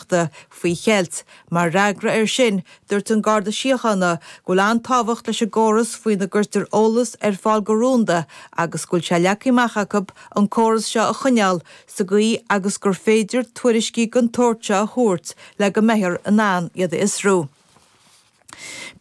Ríochta faoi cheilt. Mar fhreagra air sin, dúirt an Garda Síochána go bhfuil an-tábhacht leis an gcóras faoina gcuirtear eolas ar fáil go rúnda agus go bhfuil sé leagtha amach acu an córas seo a choinneáil sa gcaoi agus gur féidir tuairiscí den tsórt seo a thabhairt le go mbeifear in ann iad a fhiosrú.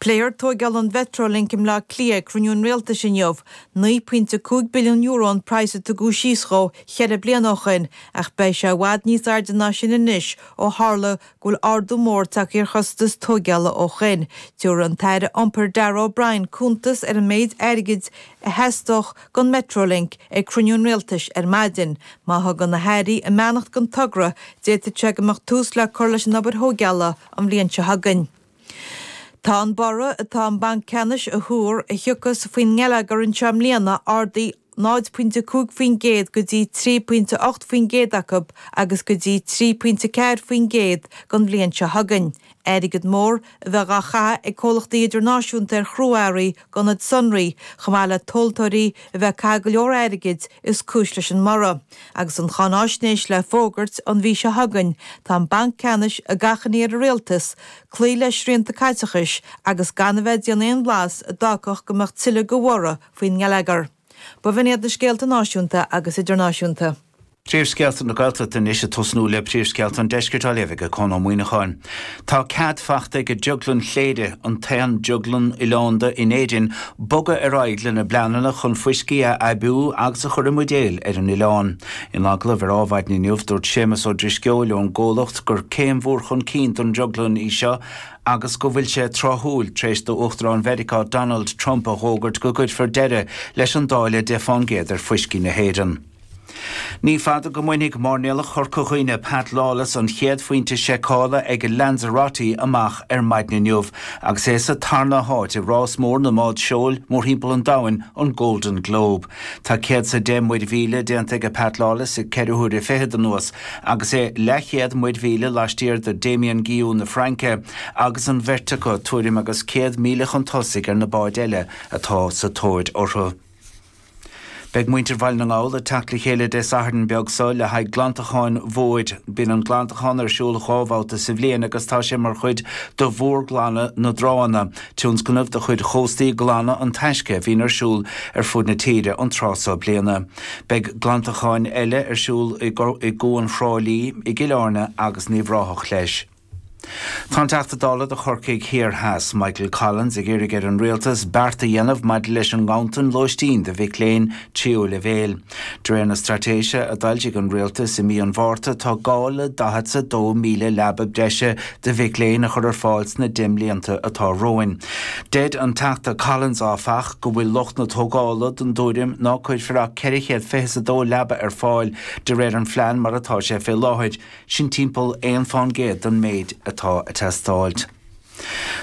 Pléifear tóigeáil an Mhetrolink i mBleá Cliath ag cruinniú an Rialtais inniu. €9.5 billiún an praghas a tugadh síos dhó cheithre bliana ó shin ach beidh sé i bhfad níos airde ná sin anois ó tharla go bhfuil ardú mór tagtha ar chostais tóigeála ó shin. Tiúrfaidh an tAire Iompair Darragh O'Brien cuntas ar an méid airgid a theastós don Metrolink ag cruinniú an Rialtais ar maidin. Má thugann na hAirí a mbeannacht don togra, d'fhéadfadh sé go mbeadh tús le cur leis an obair thóigeála an bhliain seo chugainn. Tá an borradh atá an Banc Ceannais ag tuar a thiocfas faoin ngeilleagar anseo i mbliana ardaithe 0 pointe 5% go dtí 3 pointe 8 faoin gcéad acu agus go dtí 3 pointe 4 faoin gcéad don bhliain seo chugainn. Airgead mór a bheith dhá chaitheamh ag comhlachtaí idirnáisiúnta ar chrua-earraí d'ionaid sonraí, chomh maith le tomhaltóirí a bheith ag caitheamh go leor airgid, is cúis leis an mborradh. Agus an cháináisnéis le fógairt an mhí seo chugainn, tá an Banc Ceannais ag achainí ar an Rialtas cloí le srianta caiteachais agus gan a bheith ag déanamh aon bhlas a d'fhágfadh go mbeadh tuilleadh de bhorradh faoin ngeilleagar. B'in iad na scéalta náisiúnta agus idirnáisiúnta. Príomhscéalta na Gaeltachta anois ag tosnú le príomhscéalta an Deiscirt á léamh ag Conn Ó Muíneacháin. Tá cead fachta ag Drioglann Chléire, an t-aon drioglann oileánda in Éirinn, bogadh ar aghaidh lena bpleananna chun fuiscí a aibiú agus a chur i mbuidéil ar an oileán. In agallamh ar Ádhmhaidin inniu, dúirt Séamus Ó Drisceoil ón gcomhlacht gur céim mhór chun cinn don drioglann í seo agus go bhfuil sé tráthúil tar éis d'Uachtarán Mheiriceá Donald Trump a dh'fhógairt go gcuirfear deireadh leis an dtáille 10 fán gcéad ar fuiscí na hÉireann. Ní fada go mbainfidh mairnéalach Chorca Dhuibhne Pat Lawless an chéad phointe seiceála ag Lanzarote amach ar maidin inniu agus é sa tarna háit i rás mór na mbád seoil mórthimpeall an domhain, an Golden Globe. Tá céad is a deich muir mhíle déanta aige Pat Lawless i ceithre huaire fichead anuas agus é leathchéad muir mhíle laistiar de Damien Guillou na Fraince agus an bheirt acu tuairim agus céad míle chun tosaigh ar na báid eile atá sa tóir orthu. Beidh muintir Bhaile na nGall ag teacht le chéile Dé Sathairn beag seo le haghaidh glantacháin mhóir. Bíonn an glantachán ar siúl dhá bhabhta sa bhliain agus tá sé mar chuid de mhórghlanadh na dtránna, tionscnamh de chuid Chóstaí Glana an Taisce a bhíonn ar siúl ar fud na tíre an tráth seo bliana. Beidh glantacháin eile ar siúl i gCuan Thrá Lí, i gCill Airne agus in Uíbh Ráthach leis. Tá an Teachta Dála do Chorcaigh Thiar Theas, Michael Collins ag iarraidh ar an Rialtas beart a dhéanamh maidir leis an nganntan lóistín do mhic léinn tríú leibhéil. De réir na straitéise a d'fhoilsigh an Rialtas i mí an Mhárta tá gá le daichead 's a dó míle leaba breise do mhic léinn a chur ar fáil sna deich mblianta atá romhainn. Deir an Teachta Collins, áfach, go bhfuil lucht na tógála den dtuairim ná cuirfear ach ceithre chéad fiche 's a dó leaba ar fáil de réir an phlean mar atá sé fé láthair. Sin timpeall aon faoin gcéad den méid atá ag teastáil.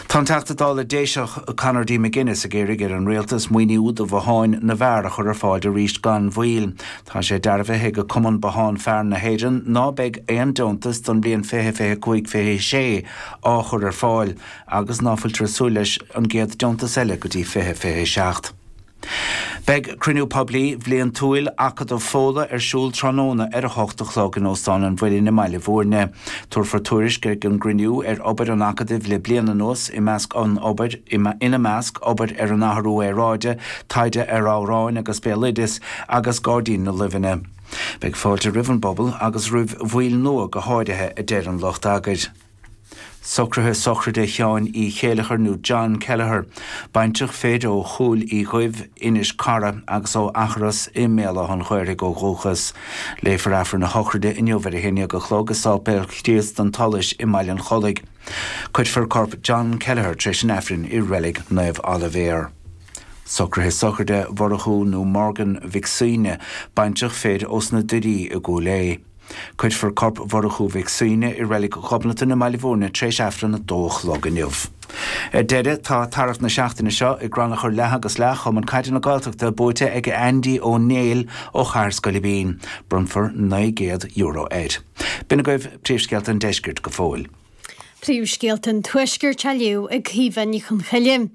Tá an Teachta Dála Déiseach Conor D. McGuinness ag iarraidh ar an Rialtas maoiniú do bhotháin na bhfear a chur ar fáil arís gan mhoill. Tá sé dearbhaithe ag Cumann Bothán Fear na hÉireann ná beidh aon deontas don bhliain fiche, fiche a cúig, fiche a sé á chur ar fáil agus ná fuiltear súil leis an gcéad deontas eile go dtí fiche, fiche a seacht. Beidh Cruinniú Poiblí Bliantúil Acadamh Fódhla ar siúl tráthnóna ar a 8 a chlog in Óstán an Mhuilinn i mBaile Bhuirne. Tabharfar tuairisc ag an gcruinniú ar obair an Acadaimh le bliain anuas, i measc an obair, ina measc, obair ar an athrú aeráide, taighde ar amhráin agus béaloideas, agus Gairdín na Luibheanna. Beidh fáilte roimh an bpobal, agus roimh bhaill nua go háirithe, a deir an lucht eagair. Socruithe sochraide Sheáin Uí Chéilleachair nó John Kelleher, baintreach fir ó Chúil Uí Dhuibh, Inis Cara, agus ó Achros i mBéal Átha an Ghaorthaidh ó dhúchas. Léifear Aifreann a shochraide inniu ar a haon dhéag a chlog i Séipéal Chríost an tSolais i mBaile an Chollaigh. Cuirfear corp John Kelleher tar éis an Aifrinn i Reilig Naomh Oilibhéar. Socruithe sochraide Mhurchú nó Morgan Mhic Suibhne, baintreach fir ós na Doirí i gCúil Aodha. Cuirfear corp Mhurchú Mhic Suibhne i reilig Ghobnatan i mBaile Bhuirne tréis aifreann a dó a chlog inniu. Ar deireadh, tá tarrac na seachtaine seo i gcrannchur leath agus leath Chumann Caide na Gaeltachta buaite ag Andy Ó Néill ó Chathair Scoilbín. Bronnfar €900 air. B'in agaibh príomhscéalta an deiscirt go fóill. Príomhscéalta an Tuaiscirt á léamh ag Caoimhe Ní Chonchoille.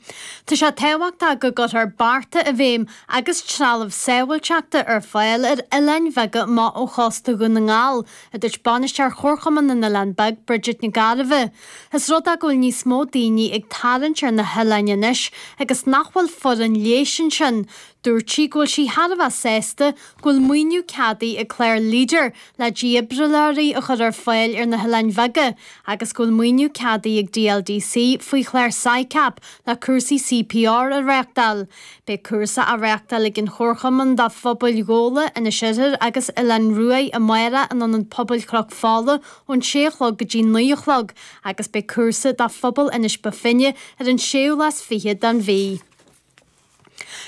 Tá sé tábhachtach go gcuirfear bearta i bhfeidhm agus trealamh sábháilteachta ar fáil ar oileáin bheaga amach ó chósta Dhún na nGall, a dúirt Bainisteoir Chomharchumann na nOileán Beag, Bridget Nic Gairbheith. Is rud é go bhfuil níos mó daoine ag tarraingt ar na hoileáin anois agus nach bhfuil foireann leighis ansin. Dúirt sí go bhfuil sí thar a bheith sásta go bhfuil maoiniú ceadaithe ag clár Leader le dífhibrileoirí a chur ar fáil ar na hoileáin bheaga agus go bhfuil maoiniú ceadaithe ag DLDC faoi chlár SICAP le cúrsaí CPR a reáchtáil. Beidh cúrsa á reáchtáil ag an chomharchumann do phobail Ghabhla, Inis Oirthir agus Oileán Ruaidh amárach in Ionad Pobail Chnoc Fola ón sé a chlog go dtí naoi a chlog agus beidh cúrsa do phobal Inis Bo Finne ar an séú lá is fiche den mhí.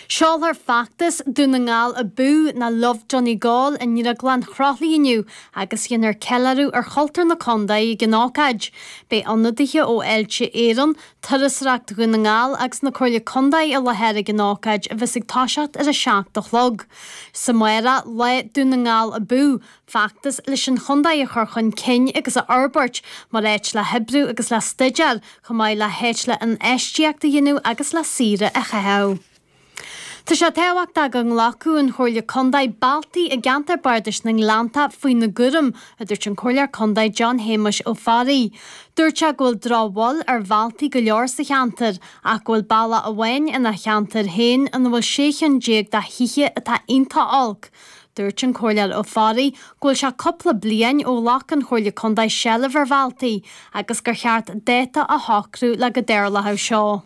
Seolfar feachtas Dún na nGall Abú ná Love Donegal i nDrioglann Chroithlí inniu agus dhéanfar ceiliúradh ar chultúr na contae ag an ócáid. Beidh ionadaithe ó Fháilte Éireann, Turasóireacht Dhún na nGall agus na Comhairle Contae i láthair ag an ócáid a bheas ag toiseacht ar a seacht a chlog. Is amárach Lá Dún na nGall Abú! feachtas leis an chontae a chur chun cinn agus a fhorbairt mar áit le hoibriú agus le staidéar, chomh maith le háit le infheistíocht a dhéanamh agus le saoire a chaitheamh. Tá sé tábhachtach go nglacfadh an Chomhairle Contae bealtaí i gceantar Bardais na nGleanntach faoina gcúram, a dúirt an Comhairleoir Contae John Shéamuis Ó Fearraigh. Dúirt sé go bhfuil drochbhail ar bhealtaí go leor sa cheantar ach go bhfuil bealach amháin ina cheantar féin ina bhfuil sé chionn déag de thithe atá iontach olc, Dúirt an Comhairleoir Ó Fearraigh go bhfuil sé cúpla bliain ó ghlac an Chomhairle Contae seilbh ar bhealtaí agus gur cheart dáta a shocrú le go dtarlódh seo.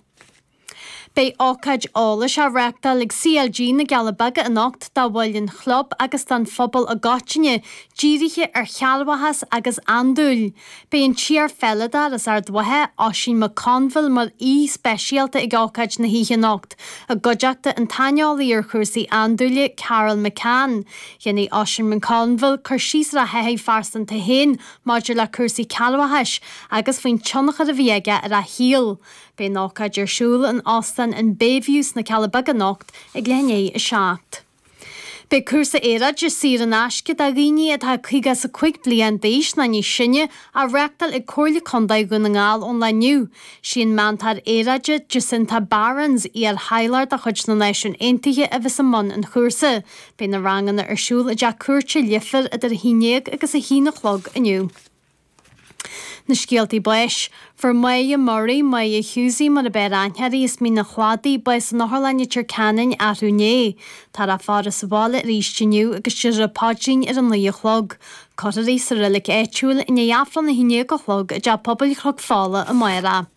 Beidh ócáid eolais á reáchtáil ag CLG na gCealla Beaga anocht do bhaill an chlub agus don phobal i gcoitinne, dírithe ar chearrbhachas agus andúil. Beidh an t-iar-pheileadóir as Ard Mhacha, Oisín McConville, mar aoi speisialta ag ócáid na hoíche anocht. I gcuideachta an tsaineolaí ar chúrsaí andúile, Carol McCann, dhéanfaidh Oisín McConville cur síos ar a thaithí phearsanta féin maidir le cúrsaí cearrbhachais agus faoin tionchar a bhí aige ar a shaol. Beidh an ócáid ar siúl in Óstán an Bayview sna Cealla Beaga anocht ag leath i ndiaidh a 7. Beidh cúrsa aeráide saor in aisce do dhaoine atá 50 is a 5 bliain d'aois ná níos sine á reáchtáil ag Comhairle Contae Dhún na nGall ón lá inniu. Sí an meantóir aeráide Jacinta Barrins, iarthaidhleoir de chuid na Náisiún Aontaithe a bheas i mbun an chúrsa. Beidh na ranganna ar siúl i dTeach Cúirte Leifir idir 11 agus 1 a chlog inniu. Na scéaltaí báis, Fuair Máire Murray, Máire Hughesy, mar ab fhearr aithne uirthi, as Mín an Chladaigh, bás san otharlann i Leitir Ceanainn arú inné. Táthar á faire sa bhaile arís inniu agus déarfar an paidrín ar a naoi a chlog. Cuirfear í sa reilig áitiúil, i ndiaidh Aifreann a haon déag a chlog, i dteach pobail Chnoc Fola amárach.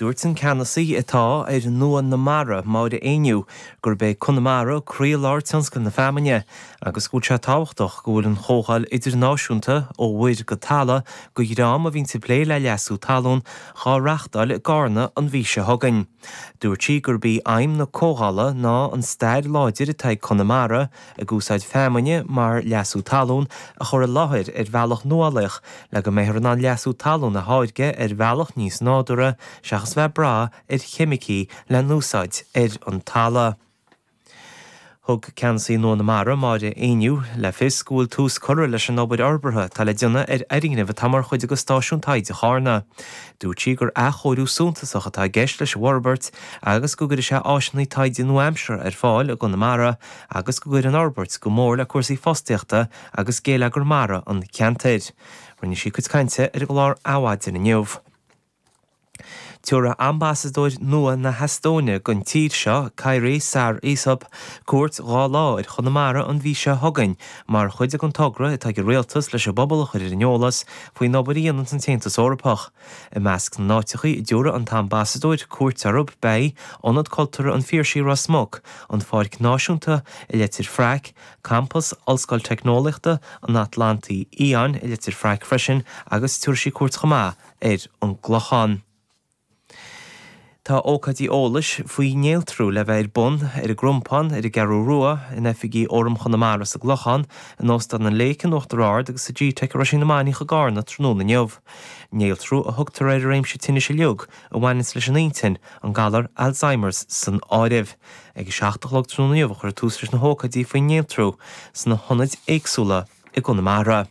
Dúirt an Ceannasaí atá ar Nua na Mara, Máire Ní Éinniú, gurb é Conamara croílár tionscal na feamainne agus go bhfuil sé tábhachtach go bhfuil an chomhdháil idirnáisiúnta, Ó Mhuir go Talamh, do dhream a bhíonns ag plé le leasú talún, dhá reáchtáil i gCarna an mhí seo chugainn. Dúirt sí gurb í aidhm na comhdhála ná an stair láidir atá ag Conamara, ag úsáid feamainne mar leasú talún, a chur i láthair ar bhealach nuálaíoch le go mbeifear in ann leasú talún a tháirgeadh ar bhealach níos nádúrtha seachas bheith ag brath ar cheimicí le n-úsáid ar an talamh. Thug Ceannasaí nua na Mara, Máire Ní Éinniú, le fios go bhfuil tús curtha leis an obair fhorbartha atá le déanamh ar fhoirgneamh atá mar chuid de Stáisiún Taighde Charna. Dúirt sí gur athchóiriú suntasach atá i gceist leis an bhforbairt agus go gcuirfidh sé áiseanna taighde nua-aimseartha ar fáil i gConamara agus go gcuirfidh an fhorbairt go mór le cúrsaí fostaíochta agus géilleagar mara an cheantair. Rinne sí a cuid cainte ar an gclár Adhmhaidin inniu. Tabharfaidh ambasadóir nua na hEastóine don tír seo, Kairi Saar Isop, cuairt dhá lá ar Chonamara an mhí seo chugainn mar chuid den togra atá ag an Rialtas leis an bpobal a chur ar an eolas faoin obair a dhéananns an tAontas Eorpach I measc na n-áiteachaí a dtabharfaidh an tAmbasadóir cuairt orthu beidh, Ionad Cultúrtha an Phiarsaigh Ros Muc, an Pháirc Náisiúnta i Leitir Fraic, Campas Ollscoil Teicneolaíochta an Atlantaigh Fhiáin i Leitir Fraic freisin agus tabharfaidh sí cuairt chomh maith ar an gClochán. Tá ócáidí eolais faoi néaltrú le bheith ar bun ar an gCrompán, ar an gCeathrú Rua, in oifigí Fhóram Chonamara sa gClochán, in Óstán an Lake in Uachtar Ard agus sa gteic i Roisín na Mainiach i gCarna tráthnóna inniu. Néaltrú a thugtar ar an réimse tinnis uilig a bhaineanns leis an inchinn, an galar Alzheimer's san áireamh. Ag a seacht a chlog tráthnóna inniu a chuirfear tús leis na hócáidí faoin néaltrú sna hionaid éagsúla i gConamara.